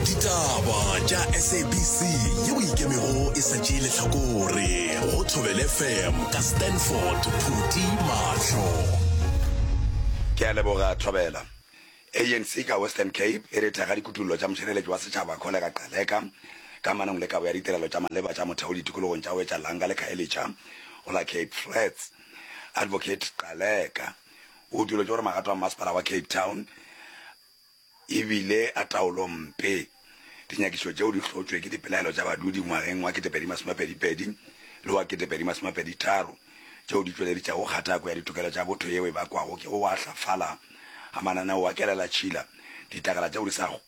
ditaba tša sabc yeo e ikemego e sa tšee lehlakore go thobele fm ka stanford phuti mahlo ke a leboga thobela anc ka western cape e re thekga dikutullo tša mošireletši wa setšhaba kgolega gcaleka ka manong le kabo ya ditirelo tša maleba tša motheo ditikologong tša wetša langa le khaelitša go la cape flats advocate gcaleka O utolotše gore magato a mmasepala wa Cape Town e bile a taolo mpe. Dinyakišo tšeo di hlotšwe ke dipelaelo tša badudi ngwageng wa 2022 le wa 2023 tšeo di tšweleditšago kgatako ya ditokelo tša botho yeo e bakwago ke go wahlafala ga mananeo a kelelatšhila, ditlakala tšeo di sa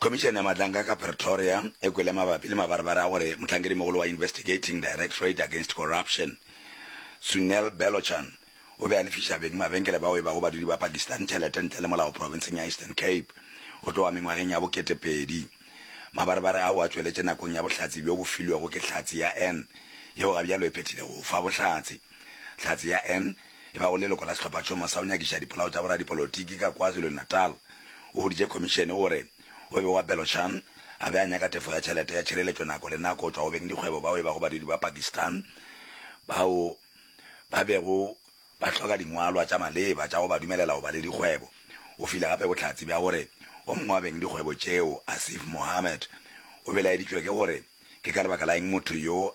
Khomišene ya Matlanka ka Pretoria e kwele mabapi le mabarebare a gore mohlankedi-mogolo wa Investigating Directorate Against Corruption, Sunil Belochan, o be a lefiša beng mabenkele bao e bago badudi ba Pakistan tšhelete ntle le molao profenseng ya Eastern Cape go tloga mengwageng ya bo ketepedi. Mabarebare ao a tšweletše nakong ya bohlatse bjo bo filwego ke Hlatse ya Anne, yeo gabjalo e phethilego go fa bohlatse. Hlatse ya Anne E ba o leloko la Sehlophatšhomo sa go Nyakiša Dipolao tša Boradipolotiki ka KwaZulu-Natal, o huditše khomišene gore o be wa Belochan a be a nyaka tefo ya tšhelete ya tšhireletšo nako le nako go tšwa go beng dikgwebo bao e bago badudi ba Pakistan bao ba bego ba hloka dingwalwa tša maleba tša go ba dumelela go ba le dikgwebo. O file gape bohlatse bja gore o mongwe wa beng dikgwebo tšeo, Asif Mohammed, o belaeditšwe ke gore ke ka lebaka la eng motho yo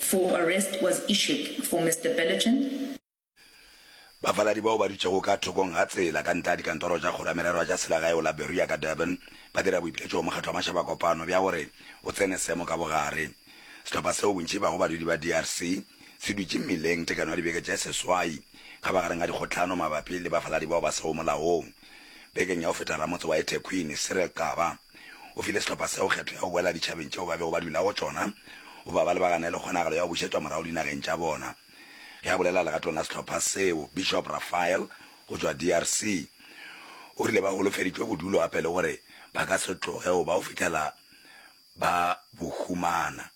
For arrest was issued for Mister Belligen. Bafaladi bao ba dutšego ka thokong ga tsela ka ntle ga dikantoro tša Kgoro ya Merero ya tša Selagae go la Berea ka Durban ba dira boipiletšo go Mokgatlo wa Mašaba Kopano bja gore o tsene seemo ka bogare. Sehlopha seo bontši ba go badudi ba DRC se dutše mmileng tekano ya dibeke tše seswai kgabagareng ga dikgohlano mabapi le bafaladi bao ba sego molaong. Bekeng ya go feta ramotse wa eThekwini, Cyril Xaba, O file sehlopha seo kgetho ya go boela ditšhabeng tšeo ba bego ba dula go tšona, O ba ba lebagane le kgonagalo ya go bušetšwa morago dinageng tša bona. Ge a bolela legatong la sehlopha seo, Bishop Raphael go tšwa DRC o rile ba holofeditšwe bodulo gape le gore ba ka se tloge go ba go fihlela ba bo humana.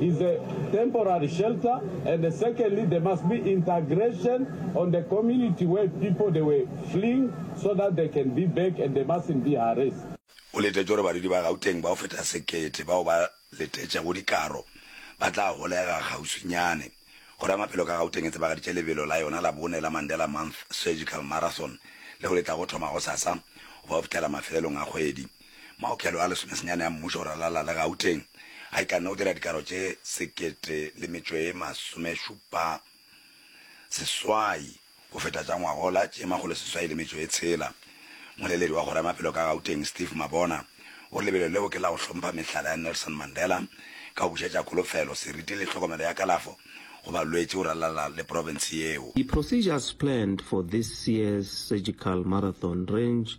is a temporary shelter and secondly there must be integration on the community where people they were fleeing so that they can be back and they mustn't be harrassed. O letetše gore badudi ba Gauteng ba go feta sekete bao ba letetšego dikaro ba tla holega kgauswinyane. Kgoro ya Maphelo ka Gauteng e tsebagaditše lebelo la yona la bone la Mandela Month Surgical Marathon leo le tlago thoma gosasa go ba go fihlela mafelelong a kgwedi. Maokelo a lesomesenyane a mmušo go ralala le Gauteng a ikanne go dira dikaro tše sekete le metšo e masomešupa seswai go feta tša ngwagola tše makgolo seswai le metšo e tshela. Moleledi wa kgoro ya maphelo ka Gauteng Steve Mabona o re lebelo leo ke la go hlompha mehlala ya Nelson Mandela ka go bušetša kholofelo, seriti le tlhokomelo ya kalafo go balwetši go ralala le profense yeo. Di procedures planned for this year's surgical marathon range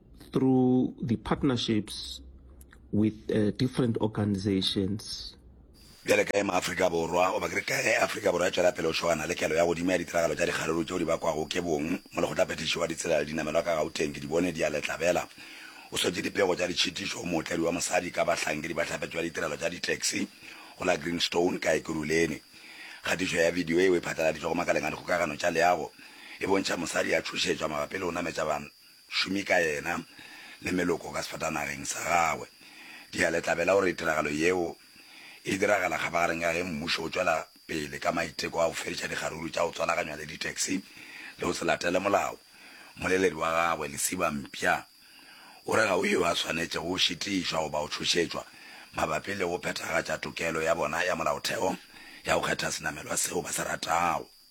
Through the partnerships with uh, different organizations. Bjale ka ema Afrika Borwa, goba ke re ka ge Afrika Borwa e tšwela pele go šogana le kelo ya godimo ya ditiragalo tša dikgaruru tšeo di bakwago ke bong, molekgotlaphethiši wa ditsela le dinamelwa ka Gauteng ke di bone di a letlabela. O swetše dipego tša ditšhitišo go mootledi wa mosadi ka bahlankedi ba tlhapetšo ya ditirelo tša ditaxi go la Greenstone ka Ekurhuleni. Kgatišo ya bidio yeo e phatlaladitšwego makaleng a dikgokagano tša leago e bontšha mosadi a tšhošetšwa mabapi le go nametša šome ka yena le meloko ka sefatanageng sa gagwe. Ke a le tlabela gore tiragalo yeo e diragala kgapagareng ka ge mmušo o tšwela pele ka maiteko a go fediša dikgaruru tša go tswalaganywa le ditaxi le go se latele molao. Mmoleledi wa gagwe, Lesiba Mpya, o re ga go yo a swanetšego go šitišwa goba go tšhošetšwa mabapi le go phethagatša tokelo ya bona ya molaotheo ya go kgetha senamelwa seo ba se ratago.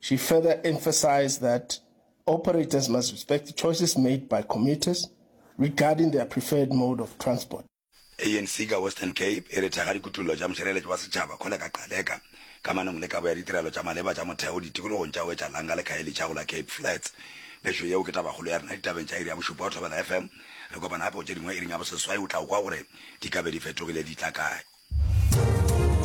She further emphasized that operators must respect the choices made by commuters regarding their preferred mode of transport. ANC ka Western Cape e re thekga dikutollo tša mošireletši wa setšhaba Kholeka Gcaleka kamanong le kabo ya ditirelo tša maleba tša motheo ditikologong tša Wetša Langa le Khayelitsha go la Cape Flats. Gešo yeo ke tabakgolo ya rena ditabeng tša iri ya bošupa go Thobela FM. Re kopana gape go tše dingwe iring ya boseswai o tla go kwa gore di ka be di fetogile di tla kae.